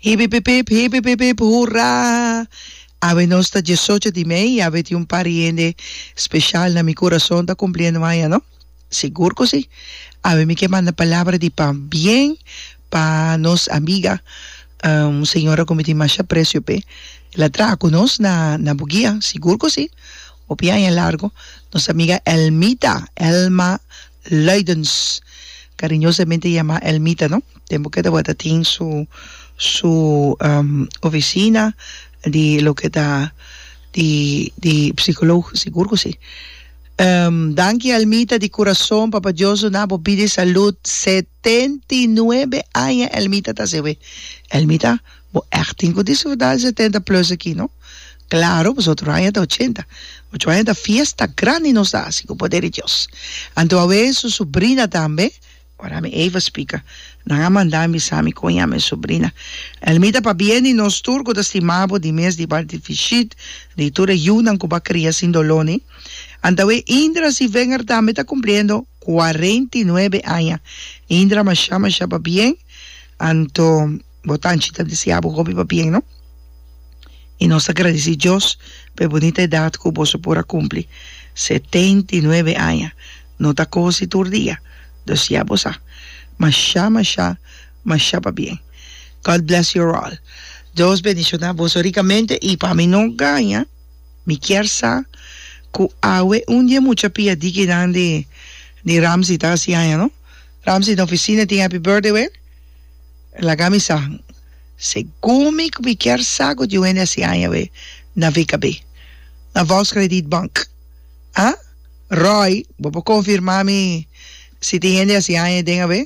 Hipipipip, hipipipip, hurra! Awe nos ta diesocho di mei y awe tin un par di hende special na mi curason ta cumpliendo aña, no? Sigur cu si. Awe mi ke manda palabra di pabien pa nos amiga, un señora cu mi tin masha aprecio p'e. El a traha cu nos na Bugia, sigur cu si. Hopi aña largo, nos amiga Elmita, Elma Luidens, kariñosamente yamá Elmita, no? Tempu ke tabata tin su, su ofisina di loke ta di, di psikoloog, sigur ku si. Danki Elmita di kurason, Papa Dios duna bo bida i salud, set. Setenta i nuebe aña el mita ta sewe. El mita, Bo ègt tin ku disfrutá e setenta plus aki, no? Klaro, boso otro aña ta ochenta. Ocho aña ta fiesta grandi nos ta hasi ku poder di Dios. Anto a wee su subrina tambe, ora mi Eva spika, Nan a manda a bisa mi kon yama e subrina. El mita, Pabia di nos tur ku ta stima bo, di mes di Bart di Fishit, di tur e yunan ku bo a kria sin doló, ni? Antawe Indra si venger tambe ta cumpliendo cuarenta y nuebe aña. Indra masha masha pa bien, anto bo tanchi ta desea bo hopi pa bien no. Y nos ta gradici Dios pa e bunita edad cu boso por a cumpli, setenta y nuebe aña, no ta cosi tur dia, dus ya bo sa. Masha masha masha pa bien. God bless your all. Dios bendiciona boso ricamente y pa mi no gaña. Mi kier sa cu awe un di e mucha pia di kinan di di Ramsey ta haci aña no. Ramsey na oficina tin happy birthday wen? Laga mi sa. Segun mi cu mi kier sa cu tin Wendy haci aña awe na VKB, na Volkskrediet Bank. Ah? Roy, bo por confirma mi si tin hende haci aña den awe?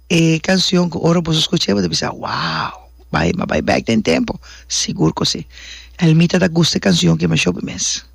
E canción cu ora boso scuch'e bo ta bisa, Wow! Bay m'a bay back den tempo! Sigur cu si. Elmita ta gusta e canción ki masho bimes.